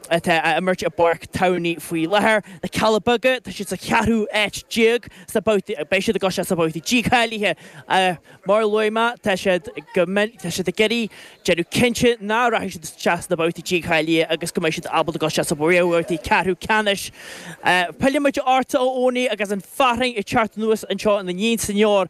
atá á imirt i bPáirc Tamhnaí faoi láthair. Na Cealla Beaga, tá siad sa cheathrú áit déag sna babhtaí, beidh siad ag gabháil isteach sna babhtaí dícháilithe. Mar a luaigh mé, tá siad ag iarraidh déanamh cinnte nach rachaidh siad isteach sna babhtaí dícháilithe agus go mbeidh siad ábalta ag dul isteach sna réamhbhabhtaí ceathrú ceannais. Pillfidh muid ortsa a Eoin agus an fhearthainn ag teacht anuas anseo ina ndiaidh san Eor.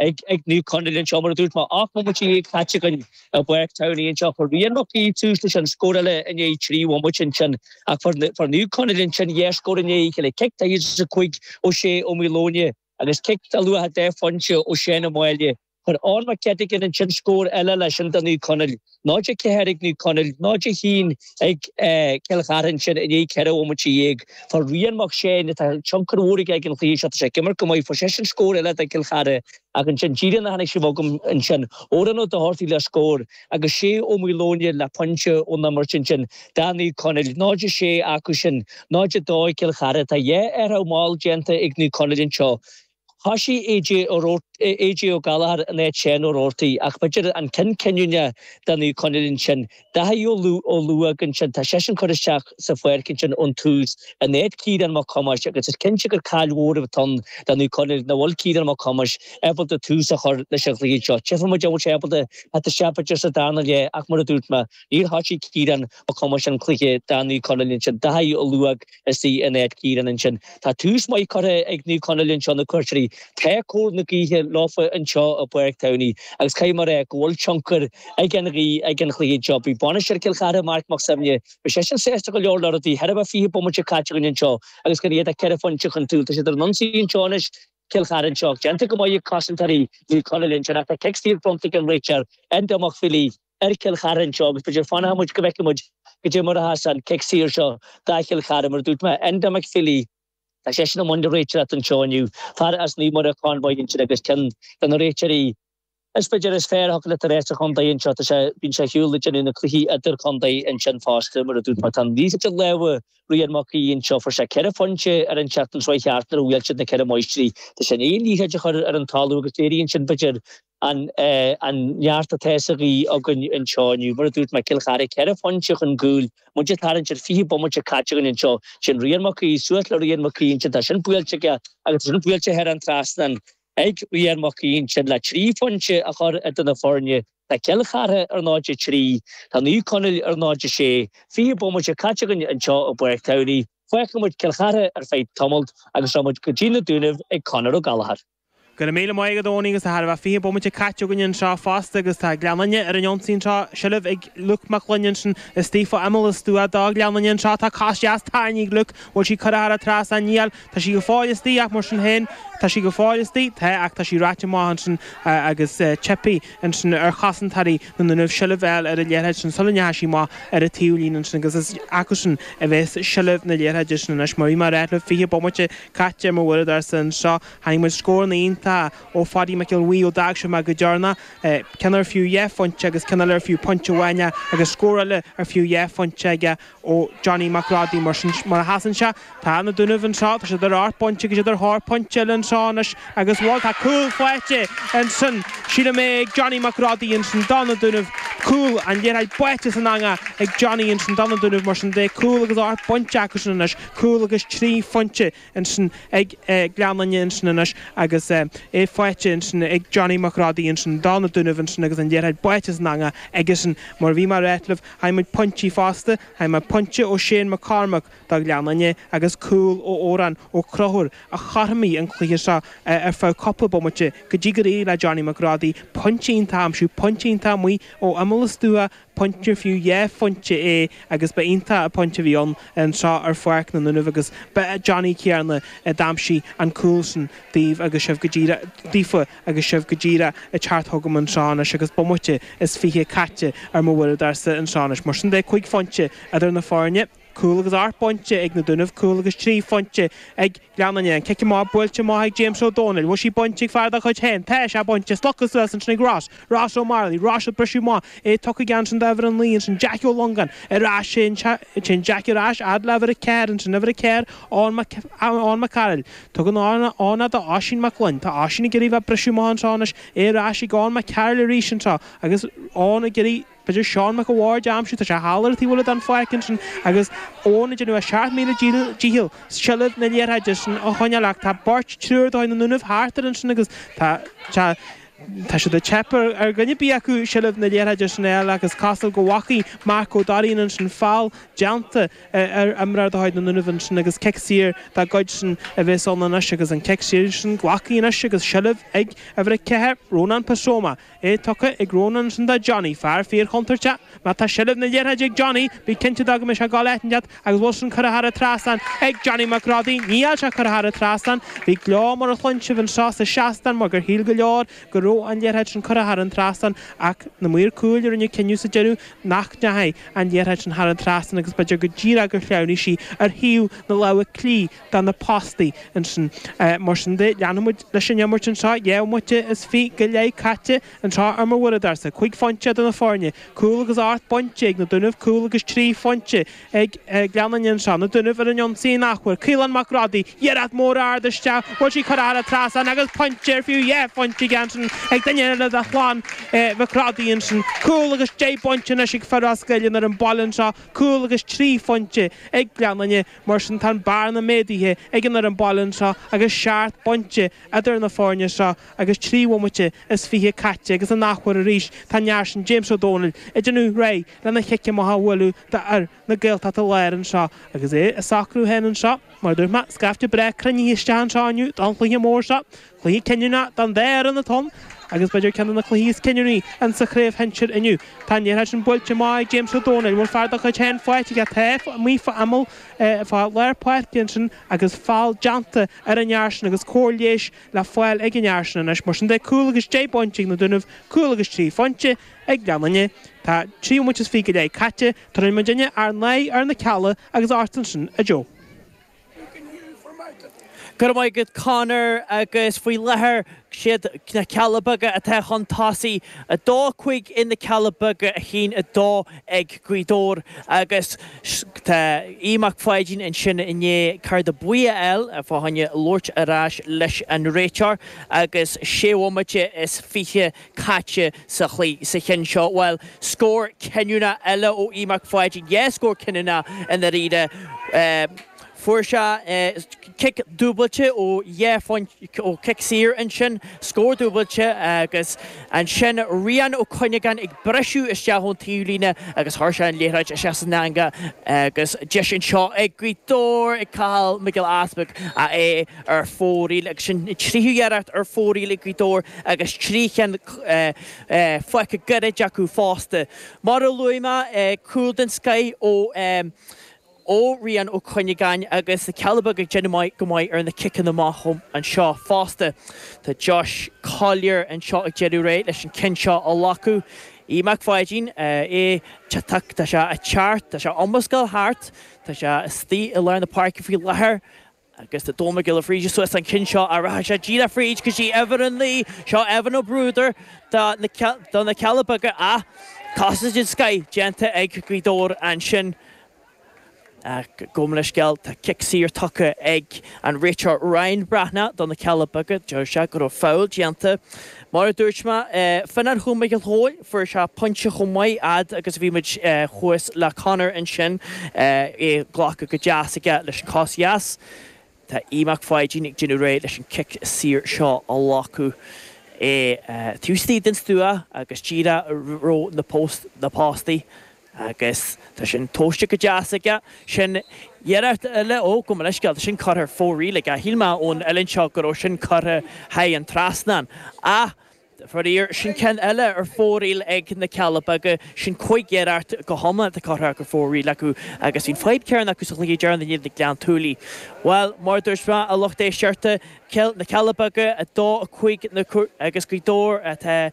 ag Naomh Conaill anseo, mar a dúirt mé, ocht mbomaite dhéag caite againn i bPáirc Tamhnaí anseo. Chuir Rian Mac Aoidh tús leis an scóráil i ndiaidh trí bhomaite ansin ach fuair Naomh Conaill ansin dhá scór i ndiaidh a chéile, cic daichead is a cúig ó Shea Ó Maoileoin agus cic ar luach dhá phointe ó Sheán Ó Máille. Chuir Eoghan Mac Eiteagáin ansin scór eile leis sin do Naomh Conaill. Náid a ceathair ag Naomh Conaill, náid a haon ag Cill Chartha ansin i ndiaidh ceithre bhomaite dhéag. Fuair Rian Mac Seáin, tá tionchar mhór aige ar an chluiche seo, tá sé ag imirt go maith, fuair seisean scór eile do Chill Chartha ach ansin díreach nuair a tháinig sibh chugam ansin, Odhrán Ó Dochartaigh le scór agus Shea Ó Maoileoin le pointe ón imirt ansin do Naomh Conaill. Náid a sé acu sin, náid a dó ag Cill Chartha. Tá dhá athrú mall déanta ag Naomh Conaill anseo. Thosaigh AJ Ó Gallchóir in áit Seán Ó Robhartaigh ach b'fhéidir an ceann cinniúna do Naomh Conaill ansin. Daithí Ó Luaigh ansin, tá seisean curtha isteach sa fhoireann ansin ón tús in áit Ciarán Mac Thomáis agus is cinnte gur caill mhór atá ann do Naomh Conaill nach bhfuil Ciarán Mac Thomáis ábalta tús a chur leis an chluiche anseo. Tchífidh muid an bhfuil sé ábalta a theacht isteach b'fhéidir sa darna leath ach mar a dúirt mé níor thosaigh Ciarán Mac Thomáis an cluiche do Naomh Conaill ansin. Daithí Ó Luaigh. istigh in áit Ciarán ansin. Tá tús maith curtha ag Naomh Conaill anseo na cuairteoirí. Tá cóir na gaoithe leofa anseo i bPáirc Tamhnaí agus caithfidh mé rá go bhfuil tionchar ag an ghaoth ar an chluiche seo. Beidh bainisteoir Chill Chartha, Marc Mac Suibhne, beidh seisean sásta go leor le rudaí. Chóir a bheith fiche bomaite caite againn anseo agus gan iad ach ceithre phointe chun cúil. Tá siad ar an ionsaí anseo anois, Cill Chartha anseo. Déanta go maith ag cosantóirí Naomh Conaill ansin ach tá cic saor bronnta ag an réiteoir, Enda McFeely, ar Chill Chartha anseo agus b'fhéidir fanfaidh muid go bhfeicfidh muid cad é mar a théas an cic saor seo do Chill Chartha mar a dúirt mé, Enda McFeely, tá seisean i mbun na réiteoireachta anseo inniu, fear as Naomh Muire, Convoy ansin agus ceann de na réiteoirí is b'fhéidir is fearr a thiocfadh leat a rá sa chontae anseo, tá sé, bíonn sé ar shiúl ag déanamh na cluichí idir-chontae ansin fosta mar a dúirt mé, tá an liathróid i lámha Rian Mac Aoidh anseo, fuair sé ceithre phointe ar an tseachtain seo a chuaigh thart nuair a bhuail siad na Ceithre Máistrí, tá sé i ndiaidh an liathróid a chur ar an talamh agus léiríonn sin b'fhéidir, An neart atá sa ghaoth againn anseo inniu, mar a dúirt mé, Cill Chartha, ceithre phointe chun cúil, muid ag tarraingt ar 20 bomaite caite againn anseo. Sin Rian Mac Aoidh, suas le Rian Mac Aoidh ansin, tá sin buailte aige agus tá sin buailte thar an trasnán ag Rian Mac Aoidh ansin le trí phointe a chur idir na foirne. Tá Cill Chartha ar 0-3, tá Naomh Conaill ar 0-6. Fiche bomaite caite againn anseo i bPáirc Tamhnaí, fágfaidh muid Cill Chartha ar feadh tamailt agus rachaidh muid go dtí na Dúnaibh ag Conor Ó Gallchóir. Go raibh míle maith agat a Eoinín agus tá chóir a bheith fiche bomaite caite againn anseo fosta agus tá Gleann Fhinne ar an ionsaí anseo, seilbh ag Luke Mac Gloinn ansin istigh ar imeall an stua do Ghleann Fhinne anseo, tá cic deas tarraingthe ag Luke, bhfuil sí curtha thar an trasnán aige? Tá sí go fóill istigh ach mar sin féin tá sí go fóill istigh, tá ach tá sí ráite amach ansin agus theip ansin ar chosantóirí na nDúnaibh seilbh fháil ar an liathróid sin sula ndeachaigh sí amach ar an taobhlíne ansin agus is acusan a bhéas seilbh na liathróide sin anois mar bhí mé a rá leat fiche bomaite caite ar m'uaireadóir anseo, chonaic muid scóranna iontacha ó Phaidí Mac Giolla Bhuí ó d'fhág sibh mé go deireanach, ceann ar fiú dhá phointe aige agus ceann eile ar fiú pointe amháin agus scór eile ar fiú dhá phointe aige ó Johnny Mac Rodaigh, mar sin, mar a sheasann sé, tá na Dúnaibh anseo, tá siad ar ocht bpointe agus iad ar thóir pointe eile anseo anois agus bhuel, tá cúl faighte ansin, sílim é ag Johnny Mac Rodaigh ansin do na Dúnaibh, cúl an liathróid báite san eangaigh ag Johnny ansin do na Dúnaibh, mar sin de, cúl agus ocht bpointe acusan anois. cúl agus trí phointe ansin ag Gleann Fhinne ansin anois agus é faighte ansin ag Johnny Mac Rodaigh ansin do na Dúnaibh ansin agus an liathróid báite san eangaigh aigesan. Mar a bhí mé a ráit libh, chaill muid pointí fosta, chaill mé pointe ó Shane McCormack do Ghleann Fhinne agus cúl ó Odhrán Ó Conchúir a chothromaigh an cluiche seo ar feadh cúpla bomaite go dtí gur éirigh le Johnny Mac Rodaigh pointe iontach a aimsiú, pointe iontach amuigh ó imeall an stua pointe ar fiú dhá phointe é agus ba iontach an pointe a bhí ann anseo ar pháirc na nDúnaibh agus ba é Johnny céanna a d'aimsigh an cúl sin daoibh agus sibh go díreach daofa agus sibh go díreach ag teacht chugam anseo anois agus bomaite is fiche caite ar m'uaireadóirsa anseo anois mar sin de, cúig phointe idir na foirne. cúl agus ocht bpointe ag na Dúnaibh, cúl agus trí phointe ag Gleann Fhinne, an cic amach buailte amach ag James Ó Dónaill, bhfuil sí bainte ag fear dá chuid féin, tá sé bainte, slogtha suas ansin ag Ross, Ross O'Marley, Ross ag briseadh amach, é tugtha aige ansin d'uimhir a naoi, ansin Jack Ó Longáin ar ais, téann Jack ar ais fhad le uimhir a ceathair, ansin uimhir a ceathair Eoghan Mac Cairill, tugann Eoghan é do Oisín Mac Gloinn, tá Oisín ag iarraidh bheith ag briseadh amach anseo anois, é ar ais ag Eoghan Mac Cairill arís anseo agus Eoghan ag iarraidh. B'fhéidir Seán Mac a' Bháird a aimsiú, tá sé thall ar a' taobh eile den pháirc ansin agus Eoghan ag déanamh a sheacht míle dícheall seilbh na liathróide sin a choinneáil ach tá beirt, triúr de chuid na nDúnaibh thart air ansin agus tá, tá, tá sé ag teip ar dhuine ar bith acu seilbh na liathróide sin a fháil ach is cosúil go bhfacaigh Mark Ó Dairín ansin feall déanta ar imreoir de chuid na nDúnaibh ansin agus cic saor dá gcuidsean a bhéas ann anois agus an cic saor sin glactha anois agus seilbh ag uimhir a ceathair, Ronán Pasoma. é tugtha ag Rónán ansin do Johnny, fear fíorchontúirteach. Má tá seilbh na liathróide ag Johnny, bí cinnte de go mbeidh sé ag gabháil áit inteacht agus bhfuil sin curtha thar an trasnán ag Johnny Mac Rodaigh. Níl sé curtha thar an trasnán. Bhí gleo mar a chluin sibh anseo sa seastán mar gur shíl go leor go raibh an liathróid sin curtha thar an trasnán ach na maoir cúil a rinne cinneadh sa deireadh nach ndeachaigh an liathróid sin thar an trasnán agus b'fhéidir go díreach gur shleamhnaigh sí ar thaobh na láimhe clí do na páistí ansin. Mar sin de, leanfaidh muid leis an imirt anseo. Dhá bhomaite is fiche go leith caite anseo ar m'uaireadóirsa. Cúig phointe idir na foirne, cúl agus ocht bpointe ag na Dúnaibh, cúl agus trí phointe ag Gleann Fhinne anseo. Na Dúnaibh ar an ionsaí in athuair. Caolán Mac Rodaí, iarracht mór ard isteach, bhuail sí curtha thar an trasnán agus pointe ar fiú dhá phointe aige ansin ag duine eile de chlann Mhic Rodaí ansin. Cúl agus deich bpointe anois ag fir Ros Goill ar an bPoll anseo, cúl agus trí phointe ag Gleann Fhinne. Mar sin tá an bearna méadaithe ag an fhoireann baile anseo agus seacht bpointe idir na foirne seo agus trí bhomaite is fiche caite agus in athuair arís tá an fear sin James Ó Dónaill ag déanamh réidh lena chic amach a bhualadh d'fhir na Gaeltachta Láir anseo agus é ag socrú féin anseo. Mar a dúirt mé, scaifte breá cruinnithe isteach anseo inniu don chluiche mór seo. Cluiche cinniúnach don dá fhoireann atá ann agus b'fhéidir ceann de na cluichí is cinniúnaí in sa chraobh shinsir inniu. Tá an liathróid sin buailte amach ag James Ó Dónaill, a bhfuil fear dá chuid féin faighte aige taobh amuigh tamall fá lár páirce ansin agus feall déanta ar an fhear sin agus cóir leighis le fáil ag an fhear sin anois. Mar sin de cúl agus deich bpointe ag na Dúnaibh, cúl agus trí phointe ag Gleann Fhinne. Tá trí bhomaite is fiche go leith caite. Tabharfaidh muidinne ár n-aghaidh ar na Cealla agus chugat ansin a Joe. Go raibh maith agat Conor agus faoi láthair is iad na Cealla Beaga atá chun tosaigh, 2-5 ag na Cealla Beaga 1-2 ag Gaoth Dobhair agus tá Aodh Mac Pháidín ansin i ndiaidh cárta buí a fháil fá choinne labhairt ar ais leis an réiteoir agus sé bhomaite is fiche caite sa chluiche sa cheann seo. Bhuel, scór cinniúnach eile ó Aodh Mac Pháidín, dhá scór cinniúnach i ndáiríre. Fuair sé cic dúbailte ó dhá phointe, ó chic saor ansin, scór dúbailte agus ansin Rian Ó Cuinneagáin ag briseadh isteach ón taobh líne agus chuir sé an liathróid isteach san eanga agus deis anseo ag Gaoth Dobhair ag Cathal Mac Giolla Easpaig é a ar fóraoil, agus an tríú iarracht ar fóraoil ag Gaoth Dobhair agus trí cheann fágtha gairid acu fosta. Mar a luaigh mé, cúl den scoith ó Rian Ó Cuinneagáin agus na Cealla Beaga ag déanamh go maith ar na ciceanna amach anseo fosta. Tá Josh Collyer anseo ag déanamh réidh leis an ceann seo a ghlacadh. Aodh Mac Pháidín, tá sé thart, tá sé ag iomrascáil thart, tá sé istigh i lár na páirce faoi láthair. Agus tá Domhnall Mac Giolla Bhríde suas don cheann seo ach rachaidh sé díreach fríd go dtí uimhir a naoi. Seo Evan Ó Bruadair do na Cealla Beaga ach casadh den scoith déanta ag Gaoth Dobhair ansin. Gabh mo leithscéal, tá cic saor tugtha ag an réiteoir Ryan Breathnach do na Cealla Beaga. Deir sé go raibh foul déanta. Mar a dúirt mé, fan ar chúl Mhícheál Chóil, fuair sé pointe chomh maith, fhad agus a bhí muid thuas le Conor ansin, é glactha go deas aige leis an chos dheas. Tá Aodh Mac Pháidín ag déanamh réidh leis an cic saor seo a ghlacadh, é taobh istigh den stua agus díreach roimh na postaí. Agus tá sin tomhaiste go deas aige. Sin iarracht eile, ó, gabh mo leithscéal, tá sin curtha ar fóraoil aige. Shíl mé ón uillinn seo go raibh sin curtha thar an trasnán. Ach, faraor, sin ceann eile ar fóraoil ag na Cealla Beaga. Sin cúig iarracht go hiomlán atá curtha ar fóraoil acu. Agus bhí an fadhb chéanna acu sa chluiche deireanach in éadan Ghleann tSúilí. Bhuel, mar a dúirt mé, a lucht éisteachta, na Cealla Beaga 2, 5 agus Gaoth Dobhair atá.